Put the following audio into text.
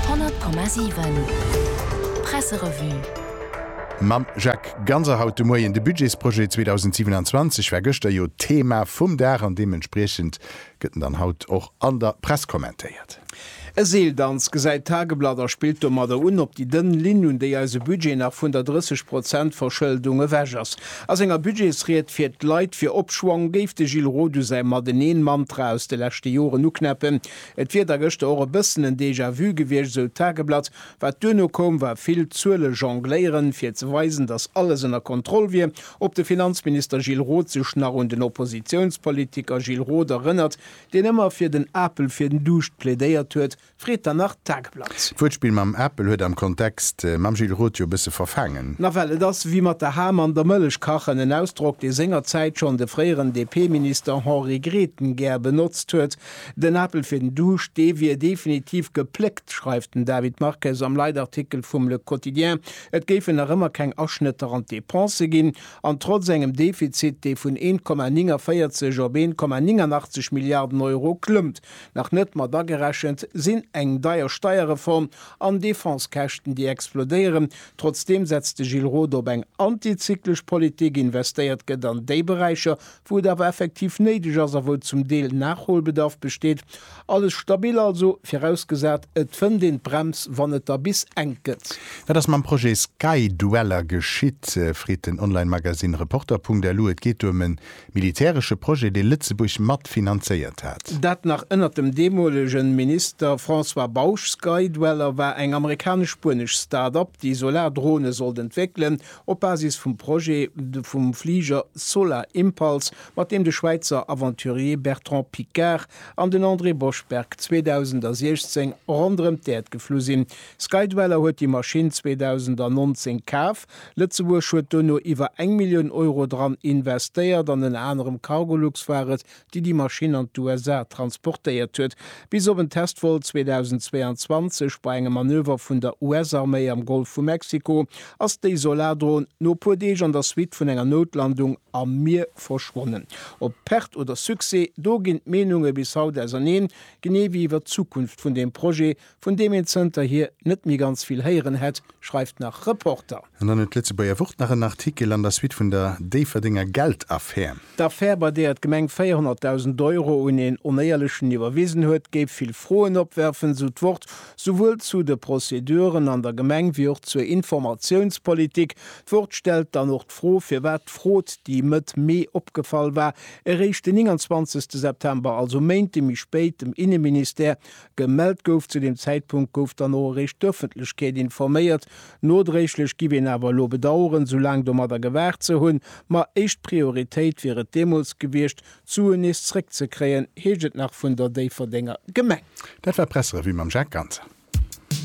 100,7 Presserevue. Mam Jacques Ganser haut de Moien. De Budgetsprojet 2027 war gëschter jo d'Thema vum Dag an deementspriechend gëtt en dann haut och an der Press kommentéiert. E Seeldanz, gesäit d'Tageblatt a spillt domadder un op déi dënn Linn, un déi eise Budget nach vun der 30 Prozent Verschëldung ewech ass. A senger Budgetsried fir d'Leit fir Opschwong géif de Gilles Roth u säi Mateneen-Mantra aus de leschte Joren uknäppen, Et wier da gëschter och e bëssen en Déjà-vu gewiescht, esou d'Tageblatt. Wat duerno koum, war vill Zuelejongléieren, fir ze weisen, datt alles ënner Kontroll wier. Ob de Finanzminister Gilles Roth sech nach un den Oppositiounspolitiker Gilles Roth erënnert, deen ëmmer fir den Apel fir den Duuscht plädéiert huet, freet dann nach d'Tageblatt. D'Wuertspill mam Apel huet am Kontext mam Gilles Roth jo e bësse verfaangen. Nawell, et ass wéi mat der Ham an der Mëllech kachen, en Ausdrock, dee sengerzäit schonn de fréieren DP-Minister Henri Grethen gär benotzt huet. Den Apel fir den Duuscht, dee wier definitiv gepléckt, schreift den David Marques am Leitartikel vum Le Quotidien. Et géifen nach ëmmer keng Aschnëtter an d'Depensë ginn. An trotz engem Defizit, dee vun 1,49 op 1,89 Milliarden Euro klëmmt, nach net mat agerechent sinn eng deier Steierreform an Defensekäschten, déi explodéieren. Trotzdeem setzt de Gilles Roth op eng antizyklesch Politik, investéiert gëtt an déi Beräicher, wou et awer effektiv néideg ass a wou zum Deel Nachholbedarf besteet. Alles stabil also, virausgesat et fënnt een d'Brems, wann et da bis enk gëtt. Wat ass mam Projet Skydweller geschitt, freet den Online-Magazine Reporter.lu. Et geet do ëm e militäresche Projet, dee Lëtzebuerg mat finanzéiert hat. Dat nach ënnert dem deemolege Minister François Bausch. Skydweller war eng amerikanesch-spuenesch Start-Up, déi Solardrone sollt entwéckelen, Op Basis vum Projet vum Fliger Solar Impulse, mat deem de Schwäizer Aventurier Bertrand Piccard an den André Boschberg 2016 ronderëm d'Äerd geflu sinn. Skydweller huet déi Maschinn 2019 kaf. Lëtzebuerg huet dono iwwer eng Millioun Euro dran investéiert, an ënner anerem Cargolux war et, déi déi Maschinn an d'USA transportéiert huet, bis op en Testvol 2022 bei engem Manöver vun der US-Arméi am Golf vu Mexiko, ass déi Solardron no e puer Deeg an der Suite vun enger Noutlandung am Mier verschwonnen. Op Perte oder Succès, do ginn d'Meenunge bis haut auserneen, genee wéi iwwer d'Zukunft vun deem Projet, vun deem een zënterhier net méi ganz vill héieren hätt, schreift nach Reporter. An dann huet d'Lëtzebuerger Wort nach en Artikel an der Suite vun der Déifferdenger Geldaffär. D'Affär, bei deeër d'Gemeng 400.000 Euro un een Onéierlechen iwwerwisen huet, géif vill Froen opwerfen, sou d'Wort. Souwuel zu de Prozeduren an der Gemeng wéi och zur Informatiounspolitik. D'Wort stellt dann och d'Fro, firwat d'Frot, déi Mëtt Mee opgefall war, eréischt den 29 September, also Méinte méi spéit, dem Inneministère, Gemellt gouf. Zu deem Zäitpunkt gouf dann och eréischt d'Öffentlechkeet informéiert. Nodréiglech giff een awer elo bedaueren, sou laang domadder gewaart ze hunn. Ma éischt Prioritéit wier et deemools gewiescht, d'Suen nees zréckzekréien, heescht et nach vun der Déifferdenger Gemeng. Dat war d'Presserevue mam Jacques Ganser.